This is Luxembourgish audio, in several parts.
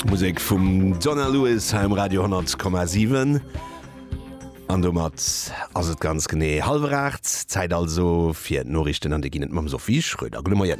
Musek vum Donna Lewis ha um Radio 10,7 an domat ass et ganz genee halwer 8 Zäit also fir d'Noriichten an de ginn et mam Sophie Schröder. Gudde Moien.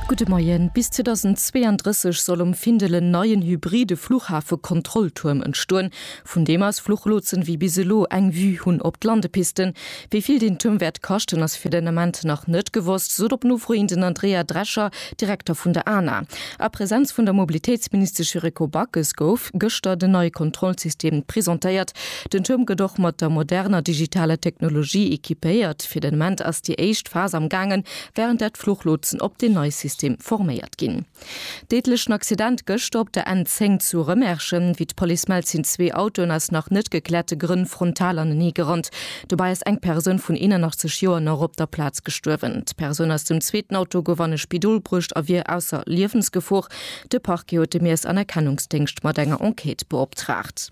Gudde Moien. Bis 2032 soll um Findel en neien hybride Fluchhafe-Kontrolltuerm entstoen. Vun deem aus Fluchlotsen wéi bis elo eng Vue hunn op d'Landepisten. Wéi vill deen Tuerm wäert kaschten, ass fir den Ament nach net gewosst, sot op Nofro hin den Andrea Drescher, Direkter vun der ana. A Presenz vun der Mobilitéitsministesch Yuriko Backes gouf gëschter den neie Kontrollsystem presentéiert. Den Tuerm gëtt och mat der moderner digitaler Technologie equipéiert. Fir den Ament ass déi éischt Phas am gaangen, wärend dat d'Fluchlotsen op deen neie System forméiert ginn. Déidlechen Accident gëschter op der N10 zu Rëmerschen. Wéi d'Police mellt, sinn zwee Autoen aus nach net gekläerte Grënn frontal anenee gerannt. Dobäi ass eng Persoun vun 81 Joer nach op der Plaz gestuerwen. D'Persoun aus dem zweeten Auto gouf an e Spidol bruecht a wier ausser Liewensgefor. De Parquet huet de Miess an Erkennungsdéngscht mat enger Enquête beoptraagt.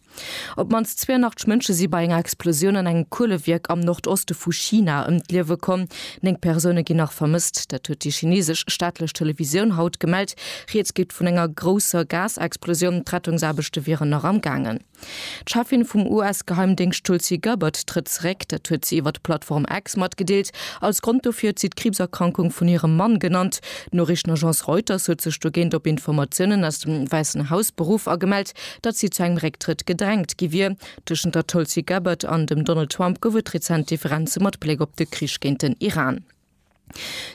Op d'mannst 82 Mënsche si bei enger Explosioun an engem Kuelewierk am Nordoste vu China ëm d'Liewe komm. Néng Persoune ginn nach vermësst. Dat huet déi chinesesch staatlech Televisioun haut gemellt. Rieds geet vun enger grousser Gasexplosioun. D'Rettungsaarbechte wieren nach am gaangen. D'Cheffin vum US-Geheimdéngscht Tulsi Gabbard trëtt zeréck. Dat huet si iwwer d'Plattform X matgedeelt. Als Grond dofir huet si d'Kriibserkrankung vun hirem Mann genannt. D'Noriichtenagence Reuters huet sech dogéint op Informatiounen aus dem Wäissen Haus beruff a gemellt, Datt si zu engem Récktrëtt gedrängt gi wier. Tëschent der Tulsi Gabbard an dem Donald Trump gouf et rezent Differenze mat Bléck op de Krich géint den Iran.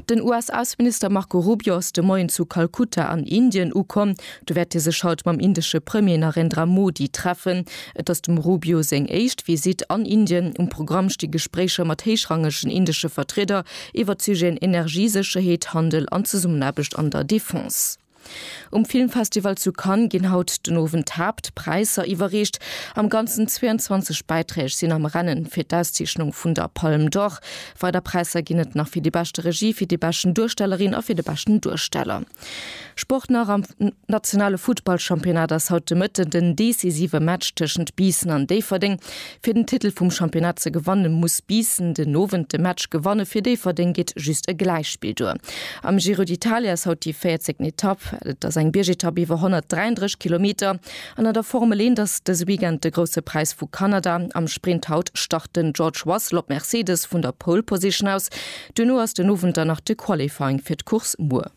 Den US-Ausseminister Marco Rubio ass de Moien zu Kalkutta an Indien ukomm. Do wäert hie sech haut mam indesche Premier Narendra Modi treffen. Et ass dem Rubio seng éischt Visitt an Indien. Um Programm sti Gespréicher mat héichrangegen indesche Vertrieder iwwert d'Sujeten Energiesécherheet, Handel an Zesummenaarbecht an der Defense. Um Filmfestival zu Cannes ginn haut den Owend d'Haaptpräisser iwwerreecht. Am Ganzen 22 Bäiträg sinn am Rennen fir d'Auszeechnung vun der Palme d'Or. Weider Präisser ginn et nach fir déi beschte Regie, fir déi beschten Duerstellerin a fir de beschten Duersteller. Sport nach, Am nationale Futtballchampionnat ass haut de Mëtten den decisive Match tëschent Biissen an Déifferdeng. Fir den Titel vum Championnat ze gewanne muss Biissen den Owend de Match gewanne, fir Déifferdeng geet just e Gläichspill duer. Am Giro d'Italia ass haut déi 14. Etapp. Et ass eng Biergetapp iwwer 133 Kilometer an an der Formel eent ass dëse Weekend de Grousse Präis vu Kanada. Am Sprint haut start den George Russell op Mercedes vun der Pole Position aus. Duerno ass den Owend dann nach de Qualifying fir d'Course muer.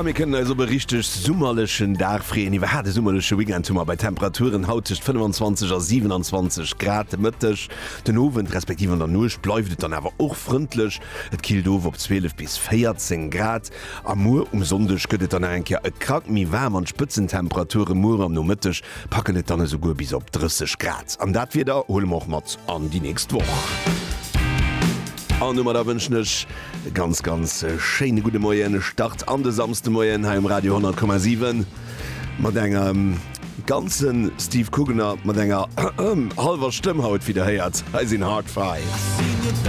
A mir kënnen eis op e richteg summerlechen Dag freeën. Iwwerhaapt e summerleche Weekend hu mer bei Temperaturen haut tëscht 25 a 27 Grad de Mëtteg. Den Owend respektiv an der Nuecht bleift et dann awer och frëndlech, et killt of op 12 bis 14 Grad. A muer um Sonndeg gëtt et dann nach eng Kéier e Krack méi waarm an d'Spëtzentemperature muer am Nomëtteg Packen et dann esouguer bis op 30 Grad. An dat Wieder huele mer och mat an déi nächst Woch. An domadder wënschen ech e ganz, ganz schéine gudde Moien. E Start an de Samsdemoien hei um Radio 10,7 mat engem ganze Steve Kugener mat enger hallwer Stëmm haut, wéi Der héiert. Hei sinn Hard Five.